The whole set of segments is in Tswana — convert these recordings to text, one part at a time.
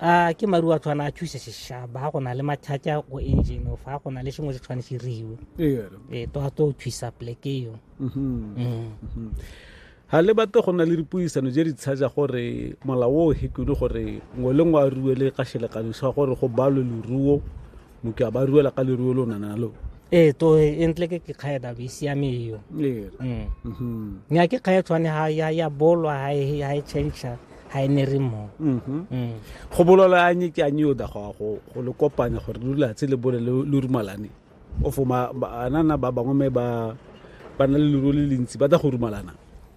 a ke maru a tshwana a thuse seshaba ga go na le mathata go engine fa go na le sengwe se tshwane se riwe ee to to thusa pleke eo mm-hmm. mm. mm-hmm. ga le batle go na le dipuisano je di tshaja gore molao o hekune gore ngwe le ngwe a ruele ka selekanyo sa gore go balwe leruo motho a ba ruela ka leruo lo nana lo ee to e ntle ke ke kgae dabo e siame eo ee Mm. mhm nya ke kgae tshwane ha ya ya bolwa ha e ha e change ha e ne re mo mhm Mm. go bololo a nye ke a nye o da go go go le kopanya gore lo latse le bole lo lo rumalane o fo ma ba- anana ba bangwe me ba ba na le leruo le lentsi ba da go rumalana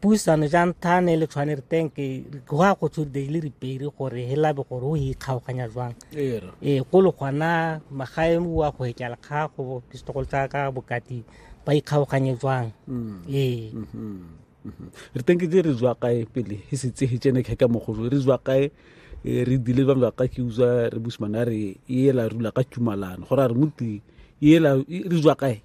puisano jang tha ne le tshwane re teng ke go a go tsho de le re pere gore he labe gore o e kgaoganya jwang e go le gona magae mo wa go ekela kha go pistogol tsa ka bokati ba e kgaoganye jwang mm. e mm-hmm. mm-hmm. re teng ke di re jwa kae pele he se tse he tsene khe ka mogolo re jwa kae e, re dile ba ba ka ke uza re busmana re e la rula ka tumalano gore re muti e la re jwa kae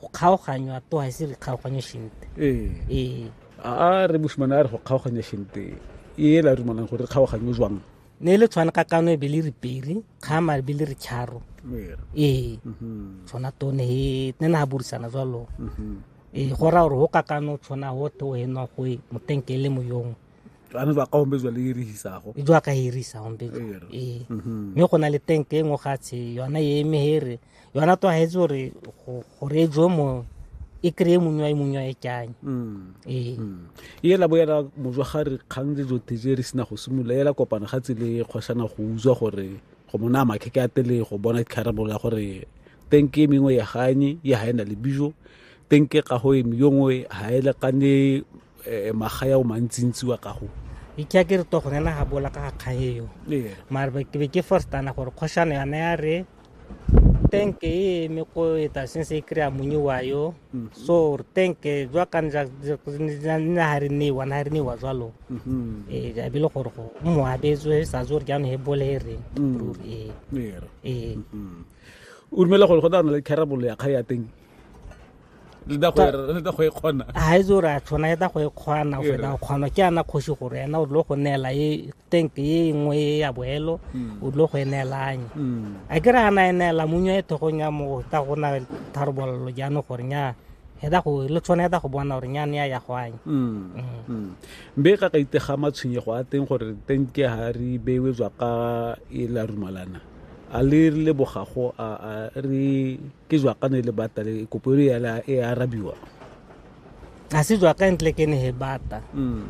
go kgaoganywa to ga se re kgaoganye shente ee. ee a re mosimane a re go kgaoganya shente e la dumalang gore re kgaoganye jwang ne le tshwana ka kano e be le reperi kgama e be le re charo ee mhm. tshwana tone e ne na burisana jwalo mhm. ee go raya gore go ka kano tshwana go te o enwa go e motenkele moyong ano ba ka hombezwa le irihisago e jwa ka irisa hombezwa ee mhm. mme go na le tank e nngwe gatshe yona e eme here yona to ga etse gore gore e jwe mo e kry-e mongwa e mongwa e kanye mm. ee mm. e ela bo ela mojwa ga re kgang le jo teje re sena go simolola ela kopana ga tsele kgwashana go utswa gore go mona makhe ke atele go bona kharabolo ya gore tenke e mengwe ya ganye ya ha ena le bijo tenke ga go e mengwe ha ele kane eh, magaya o mantsintsi wa gago ke a ke re to gone na ga bola ka ga kgaeo mare ke be ke forstana gore kgoshano yana ya re tenke e eme ko eta since e kry-a monye wa yo mhm. so re tenke jwa ka nna ga re newa na ga re newa jalo mhm. ee a bile gore go mo abetswe sa tse gore jaanong e bole e reng mm. ee ee mhm. o dumela gore go tla na le carabolo ya kga ya teng le da go e kgona ga e tse re a tshwana e da go e kgona go feta go kgona ke ana kgosi gore ena o dilo go neela e tank e nngwe e ya boelo hmm. o dilo go e neelanye hmm. a ke re ana e neela munya e thogong ya mo ta go na tharabololo jaanong gore nya e da go le tshwana e da go bona gore nyane ya ya go anya hmm. mbe ka ka itega matshwenyego a teng gore tank ya ga re bewe jwa ka e la rumalana a le lebogago a re ke jwakane le bata le kopo e e arabiwa a se jwaka ntle ke ne he bata mm.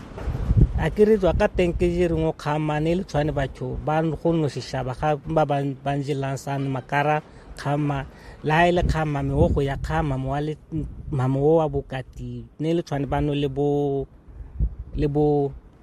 a ke re jwaka teng ke je reng o kgamane le tshwane batho ba go no shishaba ga ba ba njelang san makara kgama le ha e le kgama me o go ya kgama mo wa le mamo wa bokati ne le tshwane ba no le bo le bo